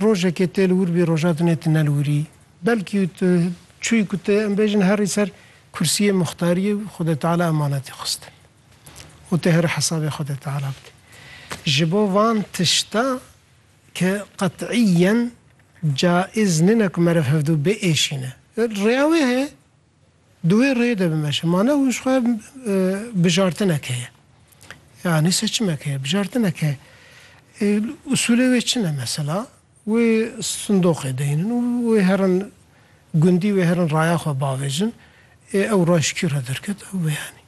Rojekê tê li wir bî roja dinê tu ne li wir î. Belkî û tu çûyî ku tu em bêjin herî ser kursiyê muxtariyê û Xwedê Teala emanetî xistin û tu herî hesabê Xwedê Teala bidî. Ji bo van tişta ke qet'îyen caiz nîne ku meriv hevdu biêşîne. Rêya wê heye. Di wê rêyê de bimeşin. Ma ne hûn ji xwe bijartinek heye. Ya nîse çimek heye, bijartinek heye. Ê usûlê wê çi ne mesela? Wê sindoqê deynin û wê herin gundî wê herin raya xwe bavêjin. Ê ew rayş kî re derket ew biyanî.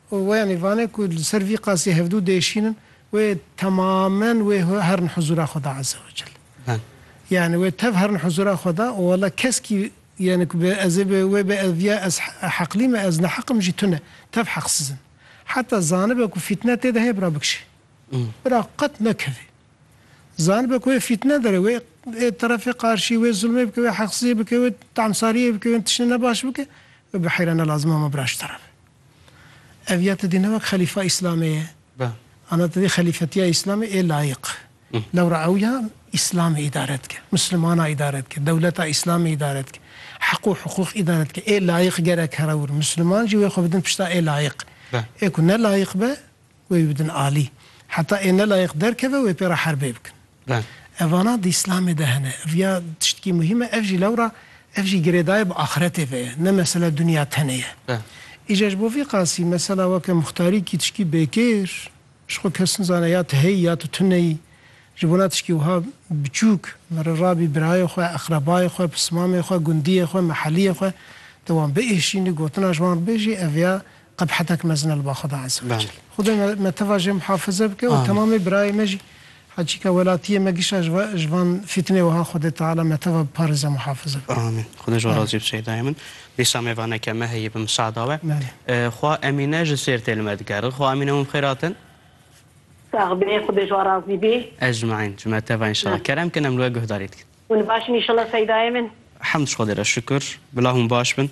û wê yanî vane ku li ser vî qasî hevdû dê şînin, wê temamen wê herin huzûra xwe de Azze we Cel. Yanî wê tev herin huzûra xwe de û wela keskî yanî ku bi ez ê bi wê bi ez viya ez heqlî me ez neheq im jî tune tev heqsiz in. Heta zanibe ku fîtne tê de heye bira bikişe. Bira qet nekeve. Zanibe ku wê fîtne dere wê ê terefê qarşî wê zulmê bike wê heqsiziyê bike wê temsariyê bike wê tiştê ne baş bike, wê bi heyra ne lazim e ma bira ji terav e. Ev ya tu dî ne wek xelîfa Îslamê ye. Ana tu dî xelîfetiya Îslamê ê layiq. Lewra ew ya Îslamê îdare dike, Mislimanan îdare dike, dewleta Îslamê îdare dike, heq û hiqûq îdare dike. Ê layiq gerek here wir. Misliman jî wê xwe bidin pişta ê layiq. Ê ku ne layiq be. Wê bidin alî. Heta ê nelayiq derkeve wê pê re herbê bikin. Evana di Îslamê de hene. Riya tiştkî muhîm e. Ev jî lewra ev jî girêdayê bi axretê ve ye. Ne mesele dinya tenê ye. Îcar ji bo vî qasî mesela weke muxtarî kî tiştkî bêkêr ji xwe kes nizane ya tu heyî ya tu tune yî. Ji bona tiştkî wiha biçûk min re rabî birayê xwe, eqrebayê xwe, pismamê xwe, gundiyê xwe, meheliyê xwe de wan biêşînî gotina ji wan re bê jî ev ya Qebhetek mezin e li ba Xweda Eze we Cel. Xwedê me me teva jê muhafize bike û temamê birayê me jî heçîka welatiyê me gişa ji we ji van fîtinê wiha Xwedê Teala me teva biparêze muhafize bike. Amîn. Xwedê ji we razî be Şeydayê min. Dîsa mêvaneke me heye bi misada we. Xwa Emîne ji Sêrtê li me digere. Xwa Emîne wan bi xêr hatin. Sax be, Xwedê ji we razî be. Ecmaîn ji me teva înşallah. Kerem kin em li we guhdarî dikin. Hûn baş in înşallah Seydayê min. Hemd ji Xwedê re şikur. Bila hûn baş bin.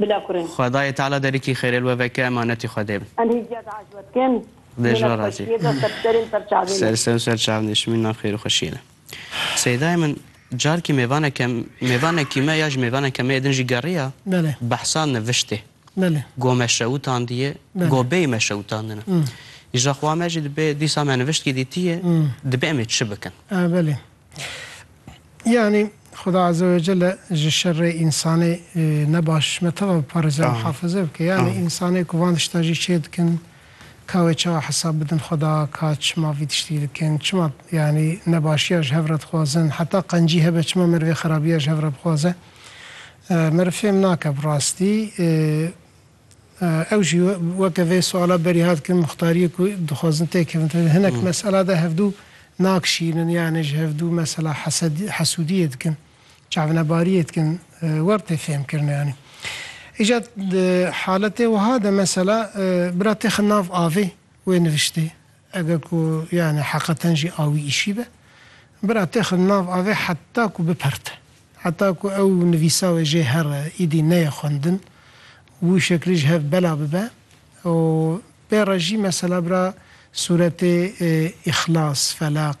Bila kurin. Xwedayê Teala derikî xêrê li we veke emanetî Xwedê bin. Em hêzîya diaj we dikin. Dê ji we razî. Mînet xweşiyê de ser serên ser çavê me. Ser ser ser çavê me şimîn nav xêr û xweşiyê de. Seydayê min carkî mêvaneke mêvanekî me ya ji mêvaneke me yê din jî geriya behsa niviştê. Go me şewitandiyê, go bêyî me şewitandine. Îja xwe me jî dibê dîsa me niviştkî dîtiyê, dibê em ê çi bikin? Yanî Xuda Eze ve Celle ji şerê însanê ne baş me tava biparêze mihafize bike. Yanî însanê ku van tişta jî çê dikin ka wê çawa hesab bidin Xuda ka çima vî tiştî dikin, çima yanî nebaşiya ji hev re dixwazin, heta qencî hebe çima merivê xerabiya ji hev re bixwaze. Meriv fêm nake bi rastî. Ew jî weke vê suala berî hat kirin, muxtariyê ku dixwazin têkevin tevî hinek mesela de hevdû nakişînin yanê ji hevdû mesela hesedî hesûdiyê dikin, çavnebariyê dikin wer tê fêmkirin yanî. Îca di haletê wiha de mesela bira têxin nav avê wê niviştê. Eger ku yanî heqeten jî a wî îşî be, bira têxin nav avê heta ku biperte. Heta ku ew nivîsa wê jê here, îdî neyê xwendin. Wî şeklî ji hev bela bibe û pê re jî mesela bira sûretê Îxlas, Felaq,